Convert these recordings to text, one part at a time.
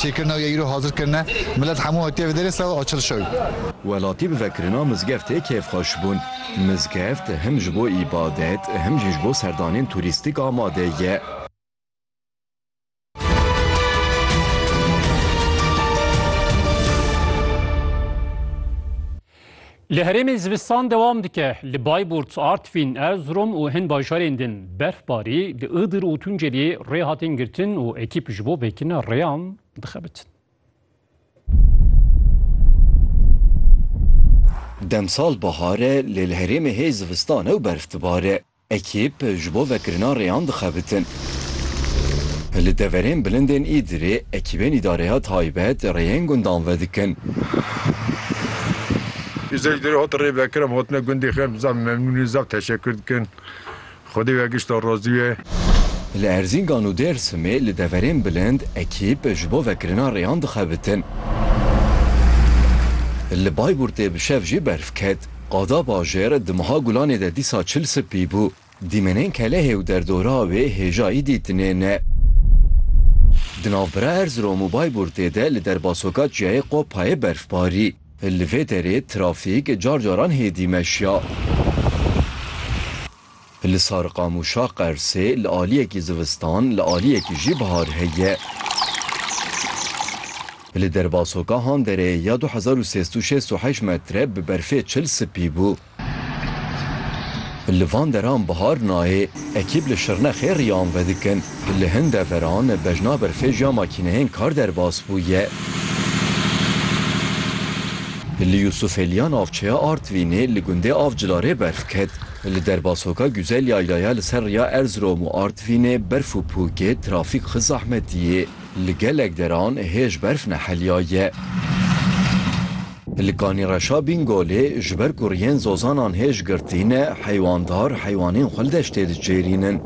Çêkirina wî ya îro hazir kirine. Milet hemû hatiye vê derê sewa açil şewî. Welatî bi vekirina mizgeftê kêfxweş bûn. Mizgeft him ji bo îbadet him jî ji bo serdanên turîstîk amade ye. Li herêmê zivistan dewam dike. Li Bayburt, Artvîn, Erzrom û hin bajarên din berfbarî, li Iğdır û Tunceliyê rê hatin girtin û ekîp ji bo vekirina rêyan dixebitin. Demsal bahar e lê li herêmê hê zivistan e û berf dibare. Ekîp ji bo vekirina rêyan dixebitin. Li deverên bilindên Îdirê ekîbên îdareya taybet rêyên gundan vedikin. Îşev ji derê hat rêvekirin, hatine gundê xêr bi zaf memnûnî û zaf teşekur dikin. Xwedê wê ya gişta razî be. Li Erzîngan û Dêrsimê li deverên bilind ekîp ji bo vekirina rêyan dixebitin. Li Bayburtê bi şev jî berf ket. Qada bajêr di meha gulanê de dîsa çil sipî bû. Dîmenên Kelehê û derdora wê hêjayî dîtinêne. Di navbera Erzirom û Bayburtê de li derbasoka çiyayê Qopayê berfbarî. Li vê derê trafîk car caran hêdî meşiya. Li Sarqamûşa Qersê li aliyekî zivistan, li aliyekî jî bihar heye. Li derbasoka han dereyê ya du hezar û sêst û şêst û heşt metre bi berfê çil sipî bû. Li van deran bihar nayê. Ekîb li Şirnexê riyan vedikin. Li hin deveran bejna berfê ji ya makîneyên kar derbas bûye. Li Yûsûfeliya navçeya Artvînê li gundê Avcılarê berf ket. Li derbasoka Guzel Yaylaya li ser riya Erzirom û Artvinê berf û pûkê trafîk xi zahmetî yê. Li gelek deran hêj berf nehelya ye. Li Kanîreşa Bîngolê ji ber ku riyên zozanan hêj girtî ne, heywandar heywanên xwe li deştê diçêrînin.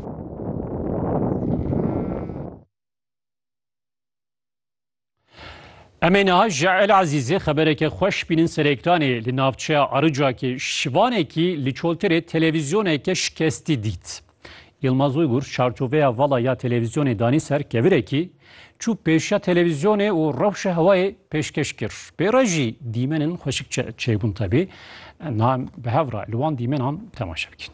Em ê niha ji El Ezîzê xebereke xweş bînin Serêktanê li navçeya Aricakê şivanekî li çoltirê televîzyoneke şikestî dît. Yilmaz Uygur çarçoveya vala ya televîzyonê danî ser kevirekî, çû pêşiya televîzyonê û rewşa hewayê pêşkeş kir. Pê re jî dîmenên xweşik çêbûn tevî. Em bi hev re li wan dîmenan temaşe bikin.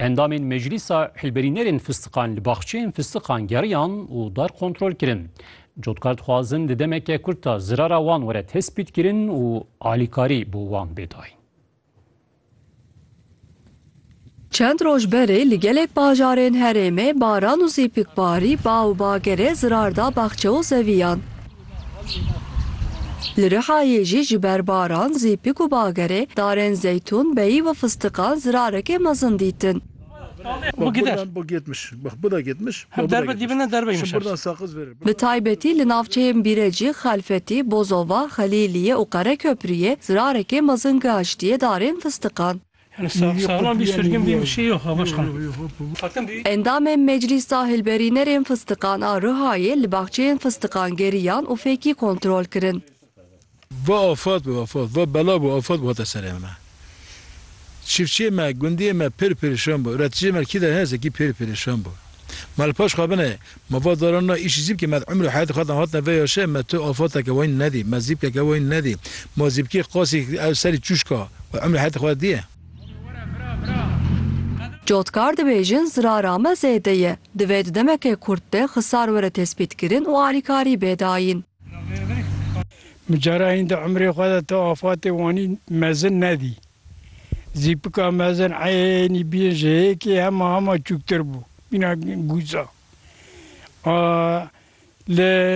Endamên Meclîsa Hilberînerên Fistiqan li baxçeyên fistiqan geriyan û dar kontrol kirin. Cotkar dixwazin di demeke kurt de zirara wan were tespîtkirin û alîkarî bo wan bê dayîn. Çend roj berê li gelek bajarên herêmê baran û zîpikbarî ba û bagere zirar da baxçe û zeviyan. Li Rihayê jî ji ber baran, zîpik û bagerê darên zeytûn, beyî û fistiqan zirareke mezin dîtin. Bi taybetî li navçeyên Bîrecî, Xelfetî, Bozova, Xelîliyê û Qereköprûyê zirarekê mezin gihiştiye darên fistiqan. Endamên Meclîsa Hilberînerên Fistiqan a Rihayê li baxçeyên fistiqan geriyan û fêkî kontrol kirin. Va afet bi afet, va bela bi afet bi hate serê min e. Çiftçiyê me, gundiyê me pêr pêrişan bû. Üreticiyê me li kî de heye zekî pêr pêrişan bû. Me li paş xwe binê Ma va daran na îşî zîbkê me di umrê heyatê xwe de hatine vê ya şe me tu afateke wayîn nedî, me zîbkeke wayîn nedî. Ma zîbkê qasî ew serî çûşka wê umrê heyatê xwe de diye. Cotkar dibêjin zirara me zêde ye. Divê di demeke kurt de xisar were tespîtkirin û alîkarî bê dayîn. Min cara hîn di umrê xwe de tu afatê wanî mezin nedî. Zîpika mezin eynî bîn ji hêkê hema hema çûktir bû, bîna gûza. A li